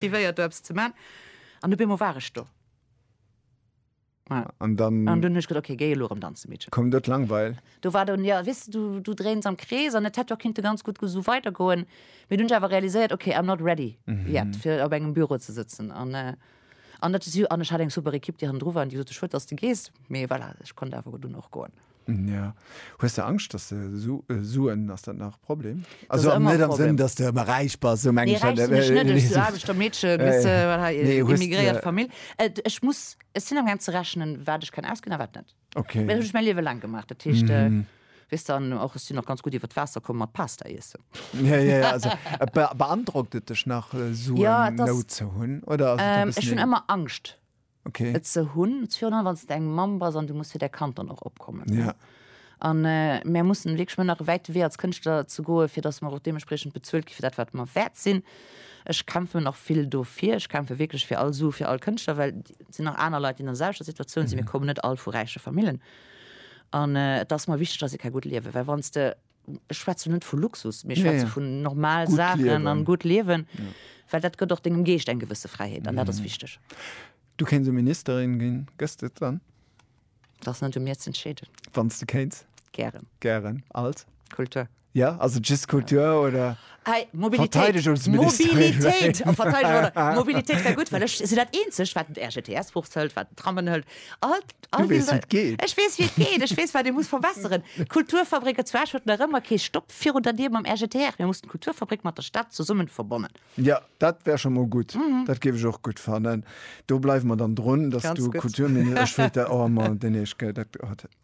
Tivéiert do eppes ze man an op eemol war ech do. An dann. An dunn hu ech gesot, ok géi elo erëm danze Meedchen. Koum do d'Langweil? Do war dann, jo weess de, du dréins am Krees an et hätt jo och kinnte ganz gutt esou weider goen. Mee dunn hu ech awer realiséiert, ok I'm not ready yet fir op engem Büro ze sëtzen an an dat si an ech hat eng super Ekipp déi hannendru war an déi gesot hu schued dass de gees, mee voilà ech konnt awer dunn och goen. Ja. Hues de Angscht, dass de Su äh, Suen, ass dat nach e Problem? Also am, net am Sënn, dass de ëmmer räich bass, sou meng ech dat. Aarbechter Meedche bis immigréiert Famill. Ech muss, ech sinn am gaang ze rechnen, wat ech kann ausginn a wat net. Okay. Well hunn ech mäi Liewe laang gemaach, dat heescht, weess de, an och ech sinn och ganz gutt iwwer d'Waasser komm mat Pasta iessen. Ja, ja, ja, also beandrockt et dech nach, Suen Nout ze hunn oder ass et e bëssen? Ech hunn ëmmer Angscht. okay. et ze hunn, virun wann de eng Mamm bass an du muss fir däi Kand dann och opkommen. Ja. An äh, mir mussen wirklich mën nach wäit wee als Kënschtler ze goe, fir dass mer och deementsprechend bezuelt gi fir dat wat mer wäert sinn. Ech kämpfe nach vill dofir. Ech kämpfe wirklich fir all Su, fir all Kënschtler, well sinn nach aner Leit, déi an selwechter Situatioun sinn. Mhm. Mir kommen net all vu räiche Famillen. An äh, et ass mer wichteg, dass ee ka gutt liewen, well wann de ech schwätzen net vu Luxus, mir schwätzen vu normal Sachen an gutt liewen, well dat gëtt och dengem Geescht eng gewësse Fräiheet an dat ass wichteg. Du kéins e Ministerin ginn, gëss de et dann? Dat ass net u mir z'entscheeden. Wann s de kéins? Gären. Gären. Als? Kultur. Jo, ass et just Kultur oder? Hey, Mobilitéit, Mobilitéit, Mobilitéit wär gutt, well ech sinn dat eenzeg wat den RGTS Buch hëlt, wat den Trammen hëlt. Du weess wéi et geet. Ech weess wéi et geet, ech weess wat ee muss verbesseren. D'Kulturfabrik et zwaasch huet nach ëmmer kee Stopp virun der Dier mam RGTR. Mir mussen d'Kulturfabrik mat der Stad zesummen verbonnen. Jo, dat wär scho mol gutt, dat géif ech och gutt fannen. Do bleiwe mer dann drun, dass du Kulturminister, ech wëllt der, oh Mann, deen Eesch, gell, dat, oh, dat.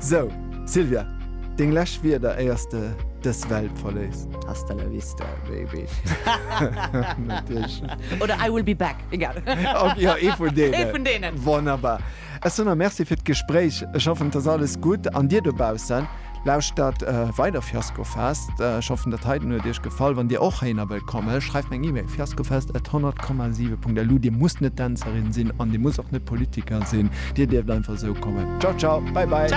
Sou, Sylvia, deng lescht Wierder éiers de dës Welt verléisst. Hasta la vista, baby. Oder I will be back, egal. Jo, ee vun deenen. Ee vun deenen. Wonnerbar. Ech soen der Merci fir d'Gespréich. Ech hoffen, et ass alles gutt. An dir dobaussen, lauschtert weider Fiaskofest. Ech hoffen, dat heiten huet iech gefall. Wann dir och héiner wëllt kommen, schreift mer eng E-Mail, fiaskofest at 100,7 punkt lu. Dir musst net Dänzerin sinn an dir musst och net Politiker sinn. Dir dierft einfach esou kommen. Ciao ciao, bye bye.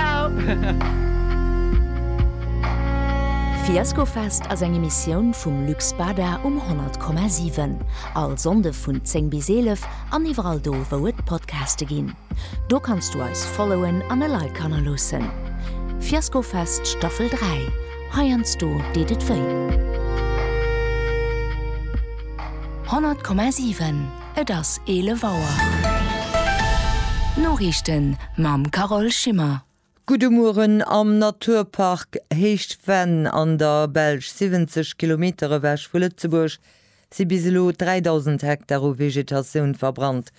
Fiaskofest ass eng Emissioun vum Luxpader um 100,7. All Sonnde vun 10 bis 11 an iwwerall do wou et Podcaste ginn. Do kanns du eis followen an e Like hannerloossen. Fiaskofest Staffel 3, heiansdo deet et wéi. 100,7. Et ass 11 Auer. D'Noriichten mam Carole Schimmer. Gudde Mueren. Am Naturpark Héicht Venn an der Belsch, 70 Kilometer ewech vu Lëtzebuerg, si bis elo 3.000 Hektar u Vegetatioun verbrannt.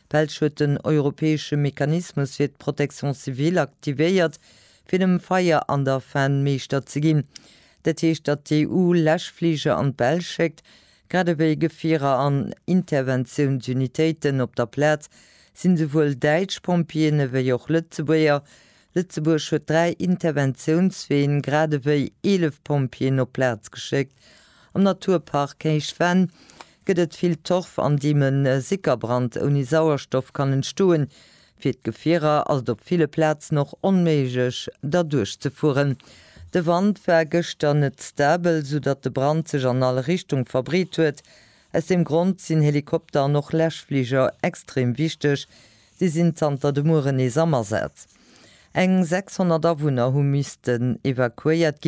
D'Belsch huet den europäesche Mechanismus fir d'Protection civile aktivéiert, fir dem Feier an der Venn Meeschter ze ginn. Dat heescht, datt d'EU Läschfliger an d'Belsch schéckt, Grad ewéi Gefierer an Interventiounsunitéiten op der Plaz sinn esouwuel däitsch Pompjeeën ewéi och Lëtzebuerger. Lëtzebuerg huet dräi Interventiounsween grad ewéi 11 Pompjeeën op d'Plaz geschéckt. Am Naturpark Héich Venn gëtt et vill Torf an deem e Sickerbrand ouni Sauerstoff kann entstoen. Fir d'Gefierer ass et op ville Plazen och onméiglech derduerch ze fueren. De Wand war gëschter net stabel, sou datt de Brand sech an all Richtung verbreet huet. Aus deem Grond sinn Helikopter an och Läschfliger extrem wichteg. Déi sinn zanter de Mueren nees am Asaz. Eng 600 Awunner hu missten evakuéiert ginn.